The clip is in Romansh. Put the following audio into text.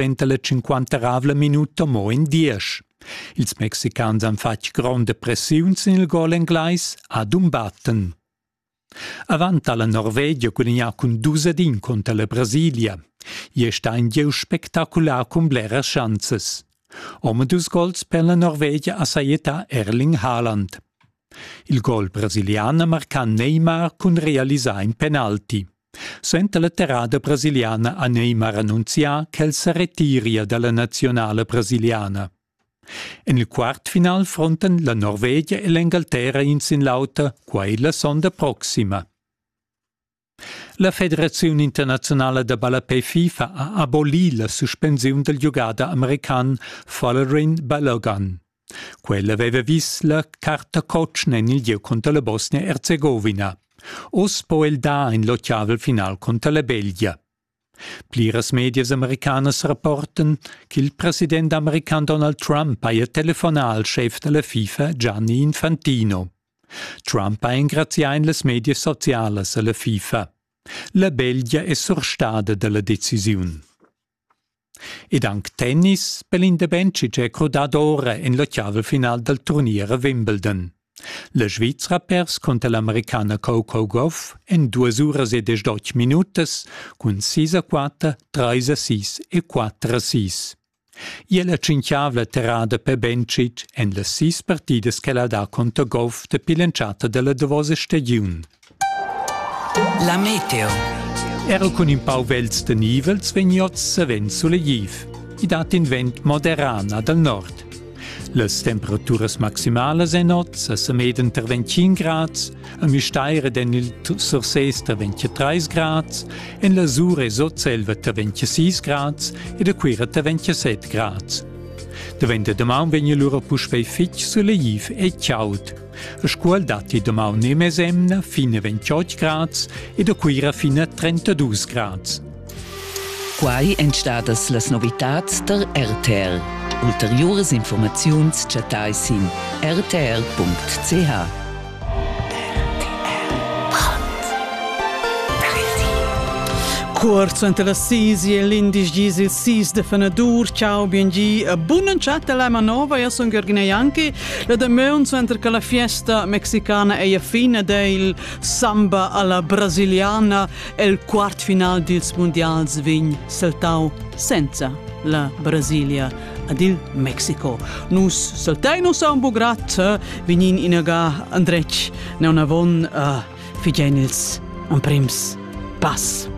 suenter la cinquanteravla minuta mo in diesch. Ils mexicans han fatg gronda pressiun sin il gol englais Adumbatten. Avant ha la Norvegia gudagnà cun dus ad in conter la Brasilia. Hier è ein gieu spektakular cun bleras schanzes. Omadus gols per la Norvegia ha sajetà Erling Haaland. Il gol brasilian ha marcà Neymar cun realisar in penalti. Suenter la terrada brasiliana ha Neymar annunzià ch'el sa retiria dalla nazionala brasiliana. En il quartfinal frontan la Norvegia e l'Engalterra in sin l'auter, quai la sonda proxima. La Federaziun internaziunala da ballapè FIFA ha abolì la suspensiun dal giugader american Valerin Balogan. Quella aveva vis la carta cotschen en il gieu cunter la Bosnia-Erzegovina. Oz po el dar in l'ottavel final cunter la Belgia. Pliras medias americanas rapportan ch'il president american Donald Trump haja telefonà al schef da la FIFA Gianni Infantino. Trump ha engrazià en las medias socialas a la FIFA. La Belgia è surstada da la decisiun. ed anc tennis per l'indebench ch'è crudada ora en la chiava final dal turnier a Wimbledon. La Svizra ha pers cunter l'Americana Coco Gauff en duas uras e desch minutas cun 6 a 4, 3 a 6 e 4 a 6. Ia la tschinchiavla terrada per Bencic en las sis partidas che la dà conter Goff dapi l'entschatta della davosa stagiun. La meteo. Era cun in pau vels de nivels vegnots savens sulegliv. I dat in vent moderan dal nord. Las temperaturas maximalas en nozza sa meden tar 25 grads, a Müstair ed en il Surses tar 23 grads, en la Sur e Sotselva tar 26 grads ed a Cuira tar 27 grads. Davent da damaun vegn lura puspei fitg sulegliv e chaud, Scuol datti damaun e mesemna fine 28 grads ed a Cuira fine 32 grads. Quai èn stadas las novitads tar RTL. Ulteriuras informaziuns chattai sin rtl.ch. Cuort enter las sis e l'indisch gis il sis de fenadur. Ciao, bien gi, e bunan chat della manova, io sun Gergina Janki La damaun suenter che la fiesta mexicana è a fin ed è il samba alla brasiliana el quartfinal dils mundials vegn saltau senza la Brasilia ad il Mexico. Nus saltein nus a un bugrat, vegnin inaga andretg neonavon uh, figein ils emprims pass.